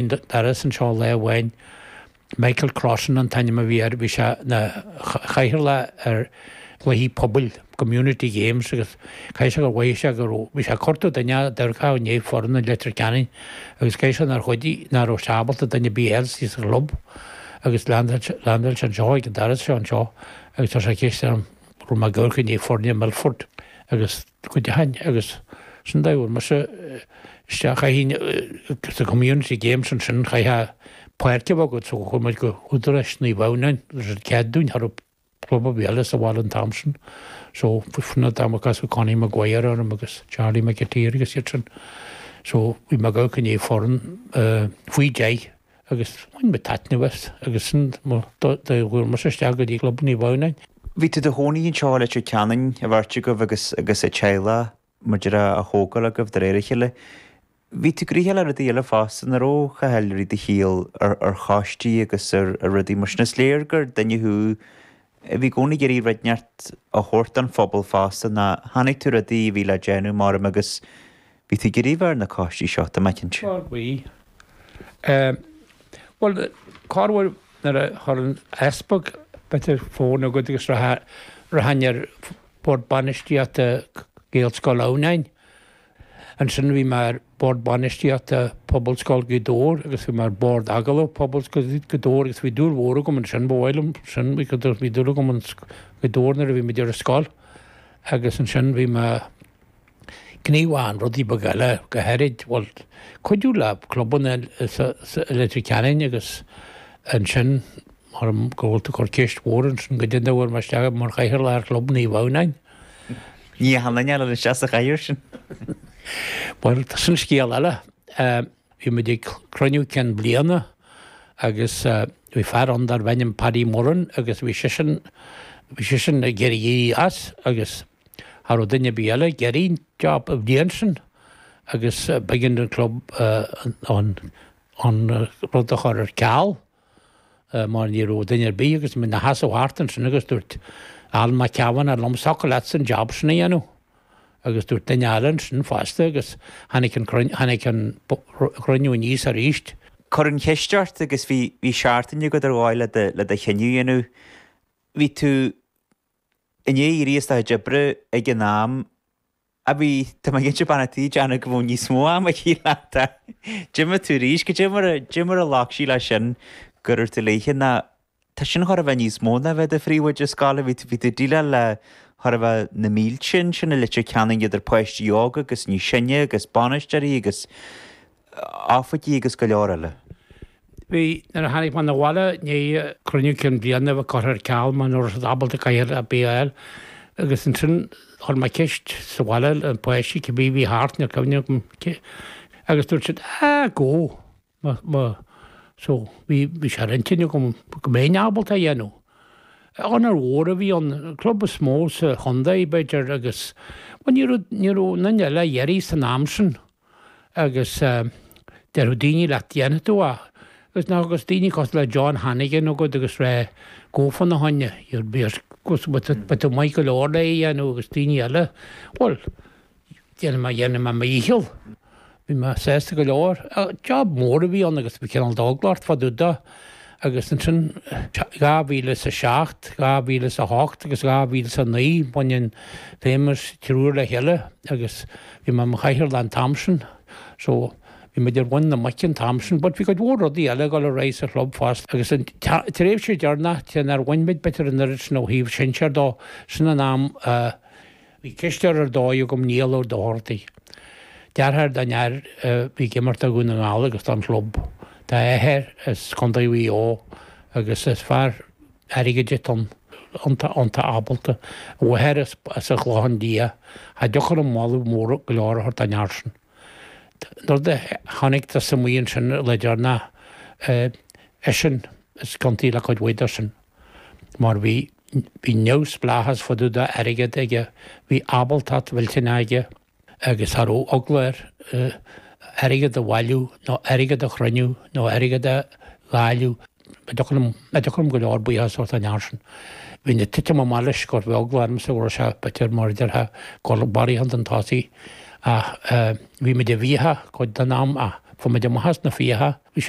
an doras anseo lá amháin. Michael Crossan an t-ainm a bhí air. Bhí sé ina chathaoirleach ar chluichí pobail, community games, agus caithfidh sé gur mhaígh sé go raibh, bhí sé ag cuartú duine a d'amharcfadh i ndiaidh foireann i Leitir Ceanainn agus caithfidh sé nár chuidigh, nach raibh sé ábalta duine ar bith a fháil sa chlub agus leaindeáil sé anseo ag an doras seo anseo agus chuir sé ceist orm, go raibh mé ag amharc i ndiaidh foirne Milford agus. go deimhin, agus sin an dóigh a bhfuair mise isteach ins na Community Games ansin, chaithfeá páirc a bheith agat so chuaigh muid go hÚdaráis Naomh Adhamhnáin agus tugadh cead dúinn cha raibh club ar bith eile sa bhaile an t-am sin so sin an t-am a casadh Connie Maguire orm agus Charlie McAteer agus iad sin so bhí mé ag amharc i ndiaidh foireann faoi deich agus bhain mé taitneamh as agus sin an dóigh a bhfuair mise isteach go dtí Club Naomh Adhamhnáin. Bhí tú i do chónaí anseo i Leitir Ceanainn, a bheirt agaibh agus agus an teaghlach, mar a déarfá, á thógáil agaibh de réir a chéile. Bhí tú gnoitheach le rudaí eile fosta, nach raibh, a Chathail, i do shuí ar choistí agus ar rudaí mar sin. Is léir gur duine thú Bhí i gcónaí ag iarraidh rud inteacht a thabhairt don phobal fosta, nuair a chonaic tú rudaí a bhí le déanamh maram agus bhí tú ag iarraidh bheith ar na coistí seo, tá mé cinnte. Á bhí. Bhuel, cár bhfuil nuair a chuir an t-easpag b'fhéidir fón agad agus rachainn ar Bhord Bainistíochta Ghaelscoil Adhamhnáin. Ansin bhí mé ar Bhord Bainistíochta Phobalscoil Ghaoth Dobhair agus bhí mé ar Bhord Agallaimh Phobalscoil Ghaoth Dobhair agus bhí dúil mhór agam ansin, ba mhaith liom sin, bhí dúil agam in Gaoth Dobhair nuair a bhí muid ar scoil agus ansin bhí mé, gníomhach in rudaí beaga eile, go háirid, bhuel, cuidiú le clubanna i Leitir Ceanainn agus ansin, mar go bhfuil tú ag cur ceist mhór ansin, cad é an dóigh a bhfuair mé isteach mar chathaoirleach ar Chlub Naomh Adhamhnáin. Ní h-ann aneal ar an seasamh chathaoir sin. Bhuel, sin scéal eile. Bhí muid ag cruinniú cinn bliana agus bhí fear ann darb ainm Paddy Moran agus bhí sisean, bhí sisean ag iarraidh éirí as agus cha raibh duine ar bith eile ag iarraidh an job an bhliain sin agus b'éigean don club an rud a chur ar ceal. mar ní raibh duine ar bith agus muid ina sheasamh thart ansin agus dúirt Alan Mac Ceabhán, liom thiocfadh leatsa an jab sin a dhéanamh? Agus dúirt duine eile ansin fosta agus tháinig an cruinniú, tháinig an cruinniú aníos aríst. Cuireadh an cheist ort agus bhí, bhí seachtain agat ar dhóigh le do, le do chinneadh a dhéanamh. Bhí tú i ndiaidh éirí as do chuid oibre ag an am. Á bhí, Tá mé cinnte bean a' tí ag déanamh go bhfuil níos mó ama aici leat. D'imigh tú arís. Cad é mar a, cad é mar a ghlac sí leis sin go raibh tú léithe nó tá sin chóir a bheith níos mó ná bheith do phríomhoide scoile, bhí tú, bhí tú ag déileáil le chóir a bheith na mílte ansin i Leitir Ceanainn idir páistí óga agus níos sine agus bainisteoirí agus oifigí agus go leor eile. Bhí, nuair a tháinig mé 'na bhaile i ndiaidh cruinniú cinn bliana a bheith curtha ar ceal, mar ní raibh siad ábalta cathaoirleach ar bith a fháil agus ansin chuir mé ceist sa bhaile le páistí cé bith bhí thart, ní cuimhin liom cé, agus dúirt siad, ah, go, mo, mo, so bhí, bhí sé ar intinn agam go mbeinn ábalta a dhéanamh. Onóir mhór a bhí ann, an club is mó sa chontae, b'fhéidir agus, bhuel ní raibh, ní raibh, na nile a dheiridh san am sin. agus déarfadh daoine leat dhéanfadh tú é. Agus ná agus daoine cosúil le John Hannigan agat agus ré gaofar na hÁinne, you'd be as cosúil but beidh tú maith go leor le é a dhéanamh agus daoine eile, bhuel, déanfaidh mé déanfaidh mé mo dhícheall. Bhí mé sásta go leor. Job mór a bhí ann agus bhí cineál d'eagla ort fadúda. agus ansin 2007, 2008 agus 2009, baineadh an famous triúr le chéile agus bhí mé i mo chathaoirleach an t-am sin, so bhí muid ar mhuin na muice an t-am sin, but bhí cuid mhór rudaí eile ag dul ar aghaidh sa chlub fosta agus an tréimhse deireanach, cé nár bhain muid b'fhéidir an oiread sin ó thaobh sinsear de, sin an am a. Bhí cisteoir ar dóigh agam, Niall Ó Dochartaigh, deartháir don fhear a bhí ag imirt do Dhún na nGall agus don chlub. Tá a athair as Contae Mhaigh Eo agus is fear airgid atá ann, iontach, iontach ábalta. A mháthair as an Chlochán Liath. Cha dtiocfadh liom moladh mór go leor a thabhairt don fhear sin. An rud a chonaic tusa amuigh ansin, a Laidre, ná eisean is ciontaí le cuid mhaith de sin. mar bhí bhí neamhspleáchas fadúda airgead aige, bhí ábaltacht mhillteanach aige agus cha raibh eagla air airgead a bhailiú nó airgead a chruinniú nó airgead a dháileadh. Cha dtiocfadh liom, cha dtiocfadh liom go leor buíochais a thabhairt don fhear sin. Bhínn ag titim amach leis but bhí eagla ormsa go raibh sé b'fhéidir mar a déarfá barraíocht chun tosaigh ach bhí muid i bhfiacha cuid den am ach fuair muid amach as na fiacha, bhí sé